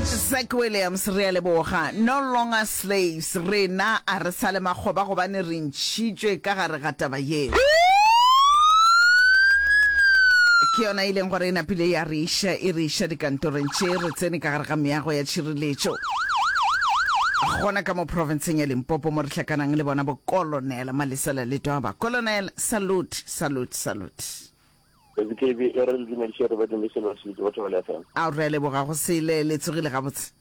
Zack Williams, Re a leboga. No longer slaves, rena a re sa le makgoba gobane re ntšhitšwe ka gare ga taba yeo. Ke yona e leng gore e napile ya re iša, e re iša dikantorong tše, re tsene ka gare ga meago ya tšhireletšo gona ka mo profenseng ya Limpopo mo re hlakanang le bona bo Kolonela Malesela Letwaba. Kolonela, salute, salute, salute. KZKB e re le dumediše re badimo selo re se bitse Batho Bale FM. Ao re a leboga go sele, le tsogile gabotse?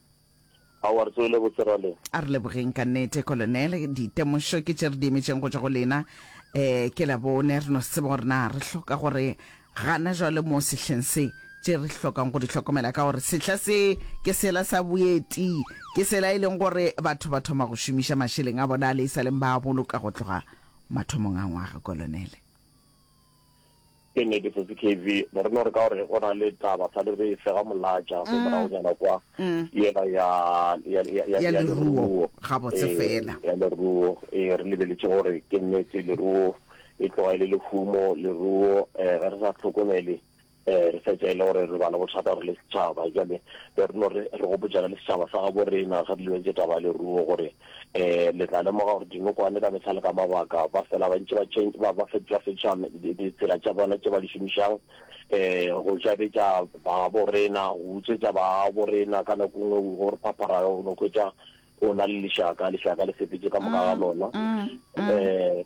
Aowa re tsogile botse ra le. A re lebogeng ka nnete Kolonele, ditemošo ke tše re di emetšeng go tšwa go lena. Eh, ke Labone re no se tseba gore na re hloka gore gana jwale mo sehleng se tše re hlokang go di hlokomela ka gore sehla se ke sela sa boeti, ke sela e leng gore batho ba thoma go šomiša mašeleng a bona a le e sa leng ba a boloka go tloga mathomong a ngwaga, Kolonele. Ke nnete sesi KV, ne re no re ka gore go na le taba sa le re e fega molatša go moragonyana kwa yela ya ya ya ya ya leruo ga botse fela ya leruo e re lebeletše gore ke nnete leruo e tloga e le lehumo leruo ge re sa tlhokomele Ee, re fetša e le gore re ba le bothata re le setšhaba. Bjale be re no re re gopotšana le setšhaba sa gabo rena ge re lebetše taba ya leruo gore um le tla lemoga gore dinokwane ka mehla le ka mabaka ba fela ba ntše ba change ba ba fetola fetola ditsela tša bona tše ba di šomišang um go jabetša babo rena go utswetša babo rena ka nako nngwe go re phaphara o no hwetša o na le lešaka lešaka le sepetše ka moka ga lona um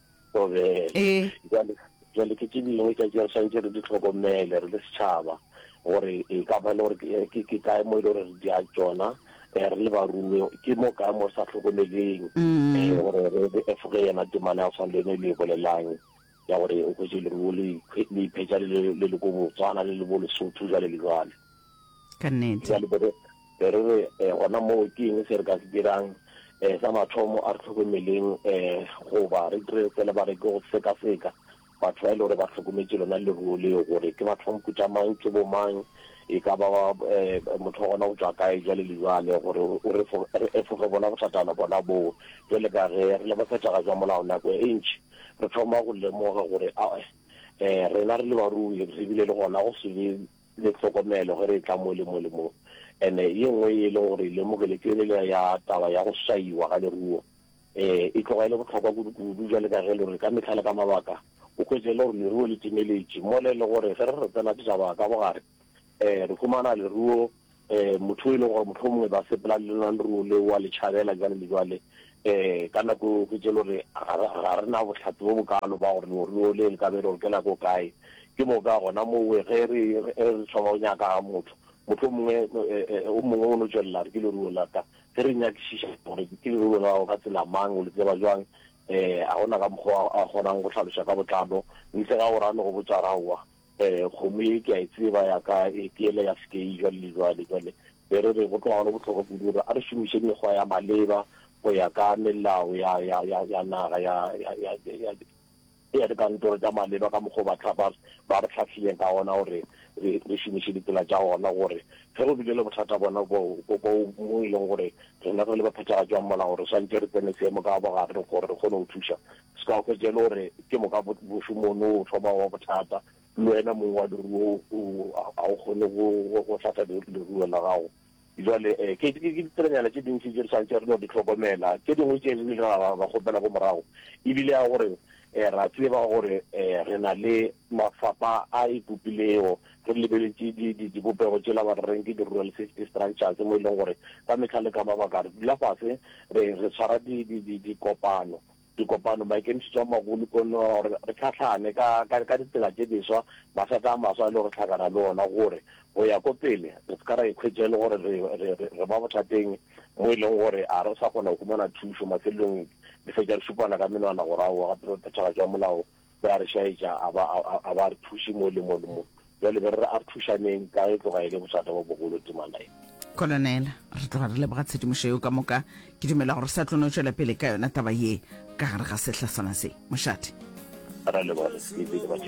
obe ee. jale jale ke tše dingwe tša tšeo santše re di tlhokomele re le setšhaba gore e ka ba le gore ke ke kae mo e le gore re dia tsona eh, re le barumi ke mo kae mo re sa tlhokomeleng mm. eh, gore re re efoge yena temana ya go tshwana le ene le e bolelang ya gore o kwetse leruo le iphetsa le le ko botswana le le bo lesotho jale le jale ka nnete jale be re be re re eh, gona moo ke eng se re ka se dirang um sa mathomo a re tlhokomeleng um goba re dire fela ba re ke go sekaseka batho ba e le gore ba tlhokometse lona leruo leo gore ke batho ba moputa mang ke bo mang e ka ba um motho wa gona go tswa kae jale le jale gore o re efoge bona bothatana bona boo jale ka ge re le bafetaga jwa molao nako e ntšhi re thoma go lemoga gore ae um rena re le barui re bile le gona go se be le hlokomelo ge re e tla mo le mo le mo. Ene ye nngwe ye e leng gore e lemogile ke elela ya taba ya go swaiwa ga leruo. Ee, e tloga e le bohlokwa kudu-kudu bjale ka ge le gore ka mehla le ka mabaka o hwetše e le gore leruo le timeletše, mola e le gore ge re re tsena ditaba ka bogare, ee, re humana leruo um motho o e leng gore motlho mongwe ba sepela le lona leruo le wa le tšhabela jwale le jwale um ka nako eo fetse le gore ga re na botlhatsi bo bokalo ba gore leruo le le ka be le gore ke la ko kae ke mo ka gona mowe ge re re thoma go nyaka ga motho motlho mongwe o mongwe o no tswelela re ke leruo la ka ge re nyakišiša gore ke leruo la gago ka tsela mang o le tseba jwang um ga gona ka mokgwa a kgonang go tlhaloša ka botlalo ntle ga gore a no go botsa raowa Eh, kgomo ye ke a e tseba ya ka e ke ele ya sekei jwale le jwale. Jwale be re re go tloga go le bohlokwa kudu gore a re šomiše mekgwa ya maleba go ya ka melao ya ya ya ya naga ya ya ya ya ya dikantoro tša maleba ka mokgwa ba tlhapa ba re tlhahlileng ka ona gore re re šomiše ditsela tša ona gore ge go bile le bothata bona bo bo bo mo e leng gore rena re le ba phethagatšwang molao re swantše re tsene seemo ka bogare gore re kgone go thuša Ska hwetša e le gore ke moka bošomono o thoma go ba bothata, le wena mong wa leruo ga o kgone go hlatha leruo la gago. Bjale ke ditsebanyana tše dintši tše re swanetše re no di hlokomela, tše dingwe tše re ile ra ba kgopela ko morago e bile ya gore ra tseba gore re na le mafapa a ipopilego, re lebeletše dipopego tšela ba reng ke di-rural safety structures mo e leng gore ka mehla le ka mabaka re dula fase re tshwara dikopano. dikopano, maikemišetšo a magolo ke ona wa gore re hlahlane ka, ka, ka ditsela tše diswa, mathata a maswa a lego re hlakana le ona, gore go ya ko pele re se ka ra ikhwetša e le gore re, re, re, re ba bothateng mo e leng gore ga re sa kgona go humana thušo, mafelelong re fetša re šupana ka menwana gore aowa gape re phethagatšo ya molao be a re šaetša, a ba a, a ba a re thuše mo le mo le mo. Bjale be re re a re thušaneng, ka ge e tloga e le bothata bjo bogolo temana ye. Kolonele, re tloga re leboga tshedimošo yeo ka moka. Ke dumela gore sa tlo no tšwela pele ka yona taba ye ka gare ga sehla sona se. Mošate. Ra leboga, re sepele, Batšefe.